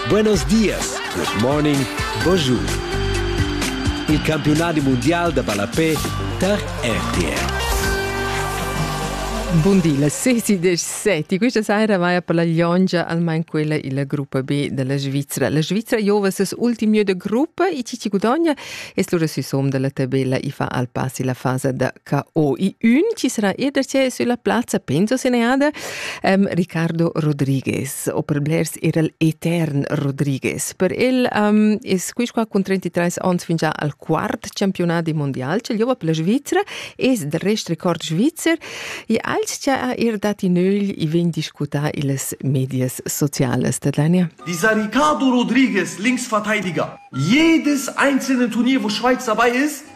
Buenos dias, good morning, bonjour. Il campiunadi mondial da ballapé tar RTL. Bun di, la 6 17. Questa sera vai per la Liongia, almeno quella il gruppo B della Svizzera. La Svizzera giova ses ultimo de gruppo e chi ci gudogna e slura sui somm della tabella e fa al passi la fase da ca o i ün chi sarà ir da che sulla plazza penso se ne ada um, Ricardo Rodriguez o per blers era etern Rodriguez per el um, es quis qua con 33 ans fin già al quart campionat di mondial ce jova per la Svizzera es del rest record svizzer e als cha ha ir dati nögl i vegn discuta illes medias sociales da Dania Dieser Ricardo Rodriguez links Verteidiger jedes einzelne Turnier wo Schweiz dabei ist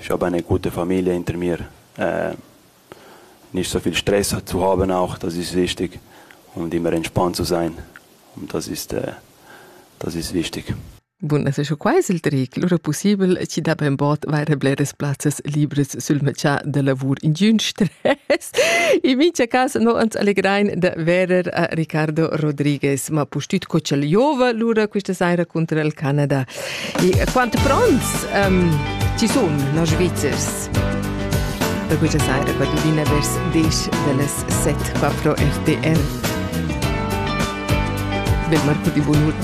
Schabain ün gutta famiglia inter mir, nisch so viel stress zu haben auch, das ist wichtig und immer entspannt zu sein. Und das ist, das ist wichtig. Bun, es es quai il tric, lura pussibel chi da ben bod vaire bleras plazzas libres sul meccià da lavur in giun stress. In mincha cas no ans allegrain da verer a Ricardo Rodriguez, ma pustüt co ch'el giova lura quista saira cunter il Canada. E quant pronts um, ti sun, nos Svizzers? Per questa saira, quattordina vers 10 dallas 7, 4 RTR. Del Marco di Bonur.